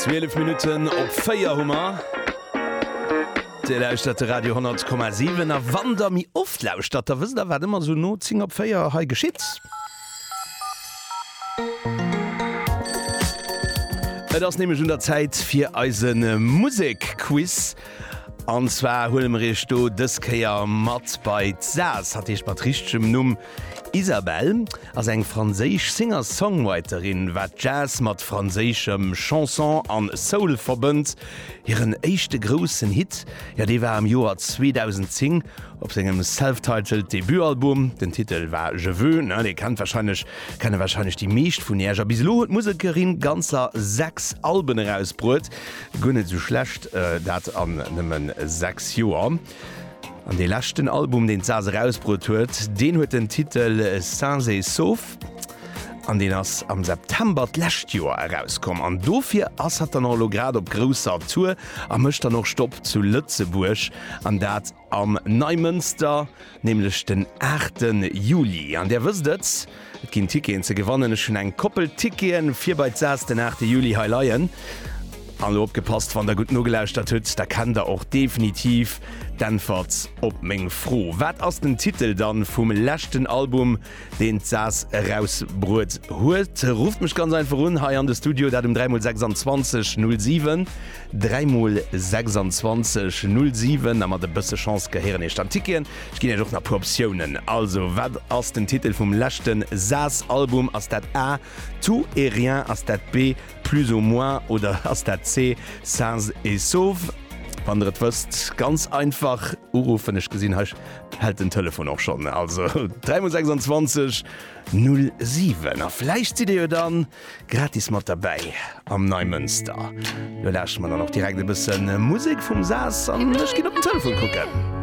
12 Minutten op 4 hu mer. Dir lauschtert de Radio 10,7 a wann der mi oft lauschtert, da wësst der wat ëmmer esou no 10 op 4 hei geschitt. Et ass nämlech un der Zäit fir eise Musekquiz. An zwar huele mer iech do dës Kéier mat bei d'Saas, dat heescht mat richtegem Numm. Isabelle ass eng franséisch Singer-Songwriterin, wat Jazz mat franséischem Chanson an Soul verbënnt. Hiren éischte groussen Hit, jo, dee war am Joer 2010 op sengem self-titled Debutalbum. Den Titel war Je veux, ne, dee kennt wahrscheinlech, kenne wahrscheinlech déi meescht vun iech. A bis elo huet d'Musekerin ganzer 6 Alben erausbruet, guer net esou schlecht dat an nëmmen 6 Joer. An dee leschten Album, deen d'Saz erausbruet huet, deen huet den Titel Sains et Saufs an deen ass am September d'lescht Joer erauskomm. An dofir ass hatt dann och elo grad op grousser Tour a mécht dann och Stopp zu Lëtzebuerg, an dat am Neimënster, nämlech den 8 Juli. An Där wësst et, Et ginn Ticketen ze gewannen. Ech hunn eng Koppel Ticketen fir bei d'Sas den 8 Juli hei leien. An elo opgepasst, wann der gutt nogelauschtert hutt, da kennt der och definitiv d'Äntwert op meng Fro. Wat ass den Titel dann vum leschten Album, deen d'Sas erausbruet huet? Rufft mech ganz einfach un hei an de Studio, dat um 3 mol 26 07. 3 mol 26, 0, 7 a mat e bësse Chance gehéieren Iech dann d'Ticketen. Ech ginn Iech och nach puer Optiounen. Also, wat ass den Titel vum leschte Saas Album? Ass dat A, Tout et rien? Ass dat B, Plus ou moins? Oder ass dat C, Sains et sauves? Wann der et wësst, ganz einfach uruffen. Ech gesinn, hei hält den Telefon och schonn. Also, 3 mol 26, 0, 7 a vläicht sidd Dir jo dann. Gratis mat derbäi am Neimënster. Lo lauschteren mer dann och direkt e bësse Musek vum Sas an ech ginn op den Telefon kucken.